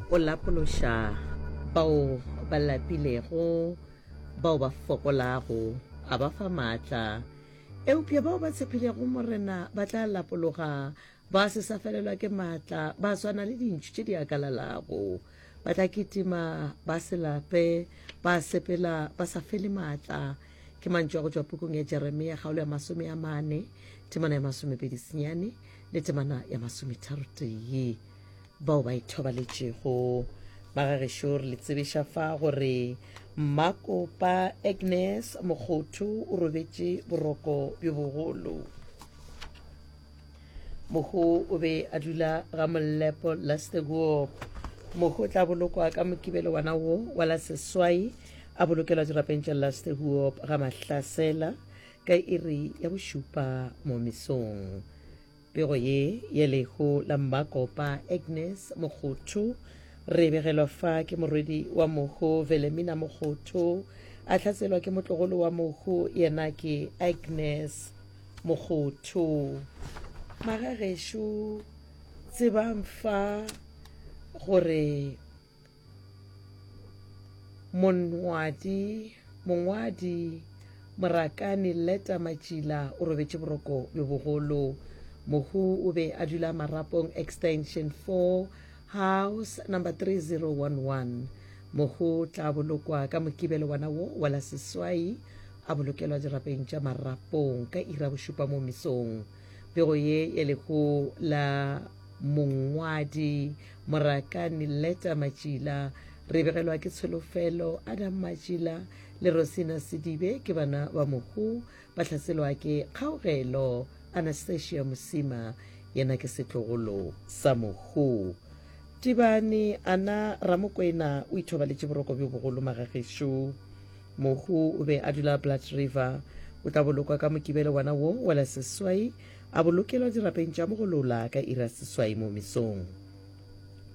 go lapološa bao ba lapilego bao ba fokolago a ba fa maatla eupša bao ba tshepilego morena ba tla lapologa ba se sa felelwa ke maatla ba swana le dintšhu tše di akalalago ba tla kitima ba se lape ba sepela ba sa fele maatla Ke mantšu a go tšwa pukung ya Jeremia, kgaolo ya masome a mane, temana ya masomepedi senyane le temana ya masometharotee. Bao ba ithobaletšego ba ga gešo re le tsebiša fa gore mmakopa agnes mokgotho o robetše boroko bjo bogolo mogo o be a dula ga mollepo la steguop mogo o tla bolokwa ka mokibelo wana wo wa la seswai a bolokelwa dirapeng tša la steguop ga mahlasela ka iri ya bošupa mo mesong pego ye ye lego la mmakopa agnes mogotho re begelwa fa ke morwedi wa mogo velemina mogotho a tlhatselwa ke motlogolo wa mogo yena ke agnes Mogotho. Magagešo tsebang fa gore mongwadi mongwadi Morakani Leta Matšila o robetše boroko bjo bogolo. Mohu o be a dula Marapong Extension 4. House No. 3011, mo go tla bolokwa ka Mokibelo wana wo wa la seswai a bolokelwa dirapeng tša marapong ka ira bošupa mo mesong. Pego ye e lego la mongwadi Morakani Leta Matšila re begelwa ke Tsholofelo Adam Matšila le Rosina Sedibe ke bana ba mohu ba hlaselwa ke kgaogelo. Anastasia Mosima yena ke setlogolo sa Mohu. Tibane, Ana Ramokwena o ithobaletše boroko bjo bogolo magagešo. Mohu o be a dula Blood River. O tla bolokwa ka Mokibelo wana wo wa la seswai, a bolokelwa dirapeng tša mogolola ka ira seswai mo mesong.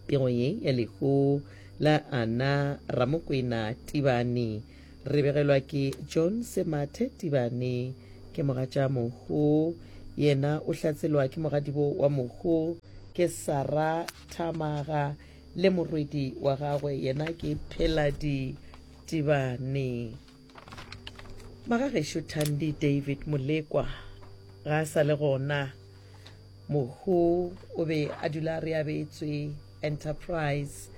Pego ye ya lehu la Ana Ramokwena Tibane. Re begelwa ke John Semathe Tibane, ke mogatša Mogo. Yena o hlatselwa ke mogadibo wa Mogo, ke Sara Thamaga le morwedi wa gagwe, yena ke Pheladi Tibane. Magagešo Thandi David Molekwa ga a sa le gona. Mohu o be a dula re abetswe Enterprise.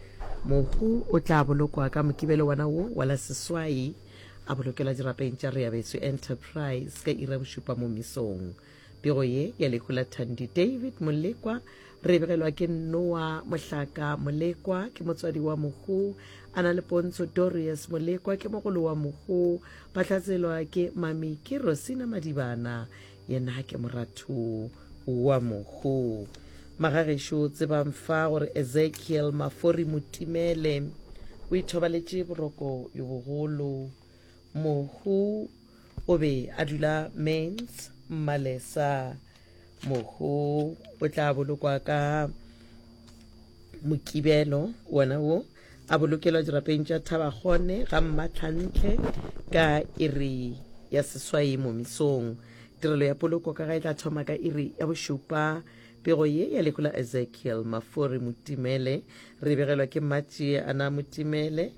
Mohu o tla bolokwa ka Mokibelo wona wo wa la seswai, a bolokelwa dirapeng tša re abetswe Enterprise ka iri ya bošupa mo misong. Pego ye ya lehu la Thandi David Molekwa re e begelwa ke Noa Mohlaka Molekwa, ke motswadi wa Mohu, a na le Pontsho Dorius Molekwa, ke mogolo wa Mohu, ba hlatselwa ke Mami ke Rosina Madibana, yena ke moratho wa mohu magagešo tsebang fa gore ezekiel mafori motimele o ithobaletše boroko yo bogolo mohu o be a dula mens mmalesa mohu o tla bolokwa ka mokibelo wona wo a bolokelwa dirapeng tša thabakgone ga mmatlhantle ka iri ya seswai momisong tirelo ya poloko ka ga e tla thoma ka iri ya bošupa pego ye ya lehu la ezekiel mafori motimele re begelwa ke mmatšie ana motimele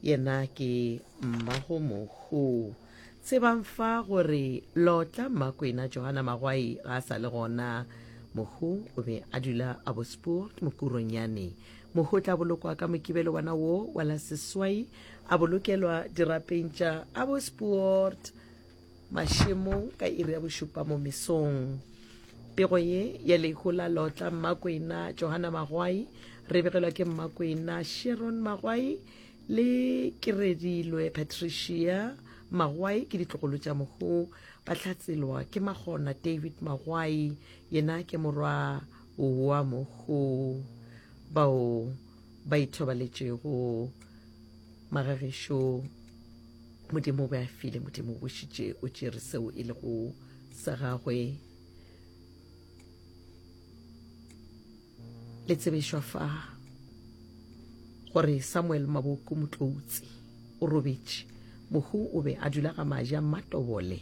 yena ke mmago mohu tsebang fa gore lotla mmakwena johana magwai ga a sa le gona mohu o be a dula a bosport mokuronyane Mohu o tla bolokwa ka Mokibelo wona wo wa la seswai, a bolokelwa dirapeng tša Abbotspoort mašemong ka iri ya bošupa mo mesong. Pego ye ya lehu la lotla Mmakwena Johana Magwai re begelwa ke Mmakwena Sharon Magwai le Kiredilwe Patricia Magwai ke ditlogolo tša mohu. Ba hlatselwa ke Magona David Magwai, yena ke morwa Oa mo go bao ba ithobaletšego magagišo Modimo o be a file Modimo o bošitše o tšere seo e lego sa gagwe le tsebišwa fa gore Samuel Maboko Motloutsi o robetše mohu o be a dula ga maja mmatobole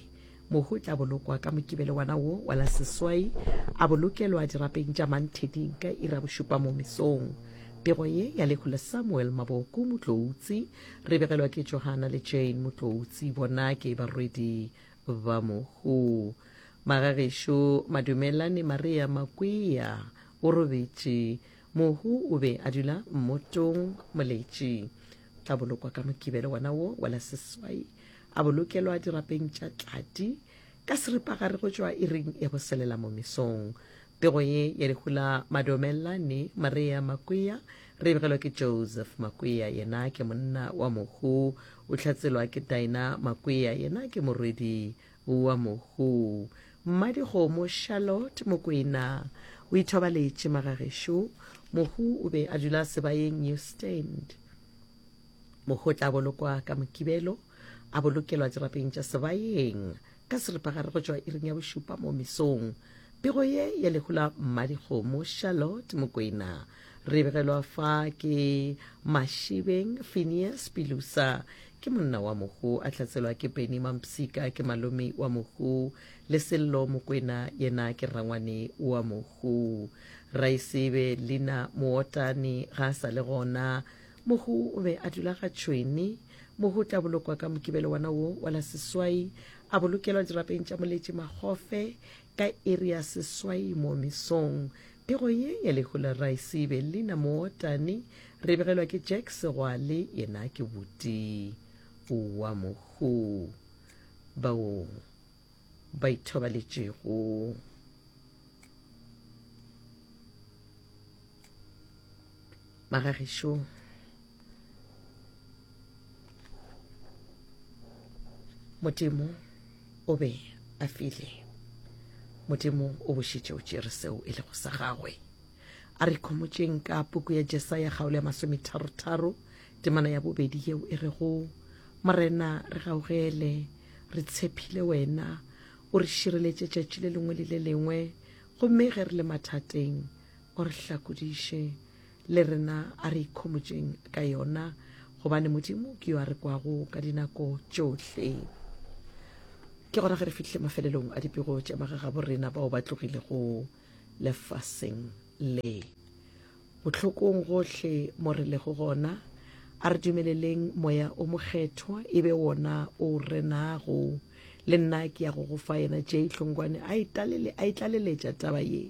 Mohu o tla bolokwa ka Mokibelo wana wo wa la seswai, a bolokelwa dirapeng tša Mantheding ka ira bošupa mo mesong. Pego ye ya lehu le Samuel Maboku Motloutsi, re begelwa ke Johana le Jane Motloutsi, bona ke barwedi ba mohu. Magagešo Madumelani Maria Makwea o robetše. Mohu o be a dula mmotong, moletši. tla bolokwa ka mokibelo wona wo wa la seswai a bolokelwa dirapeng tša tlati ka seripagare go tšwa iring ya go selela mo mesong pego ye ya dihula madomelane maria makwea re begelwa ke joseph makwea yena ke monna wa mohu o hlatselwa ke dina makwea yena ke morwedi Oa mohoo. Mmadikgomo Charlotte Mokwena o ithobaletše magagešo. Mohoo o be a dula sebaeng New Stand. Mohoo o tla bolokwa ka Mokibelo, a bolokelwa dirapeng tša sebaeng ka seripagare go tšwa iring ya bošupa mo mesong. Pego ye ya lehu la Mmadikgomo Charlotte Mokwena Re begelwa fa ke Mashibeng Phineas Pilusa ke monna wa mohu a tlatselwa ke Benny Mampsika ke malome wa mohu le Sello Mokwena yena ke rrangwane wa mohu Raisebe Lina Mootane ga a sa le gona mohu o be a dula ga Tšhweni mohu o tla bolokwa ka mokibelo wana wo wa la seswai a bolokelwa dirapeng tša moletše magofe Ka iri ya seswai mo mesong, pego ye ya lehu la Raesibe, Lina Mootani, re begelwa ke Jack Segwale, yena ke buti wa mohu bao ba ithobaletšego. ba ga gešo modimo o be a file modimo o bošitše o tšere seo e lego sa gagwe a re khomotšeng ka puku ya jesaya kgaolo ya masometharotharo temana ya bobedi yeo e rego morena re gaogele re tshephile wena o re šireletše tšatši le lengwe le le lengwe gomme ge re le mathateng O re hlakodiše, le rena a re ikhomotšeng ka yona, gobane Modimo ke yo a re kwago ka dinako tšohle. Ke gona ge re fihlile mafelelong a dipego tša magagabo rena bao ba tlogilego lefaseng le. Bohlokong gohle mo re lego gona, a re dumeleleng Moya o Mokgethwa e be wona o renago. Le nna ke ya go go fa yena, Jay Hlongwane a e talele, a e tlaleletša taba ye.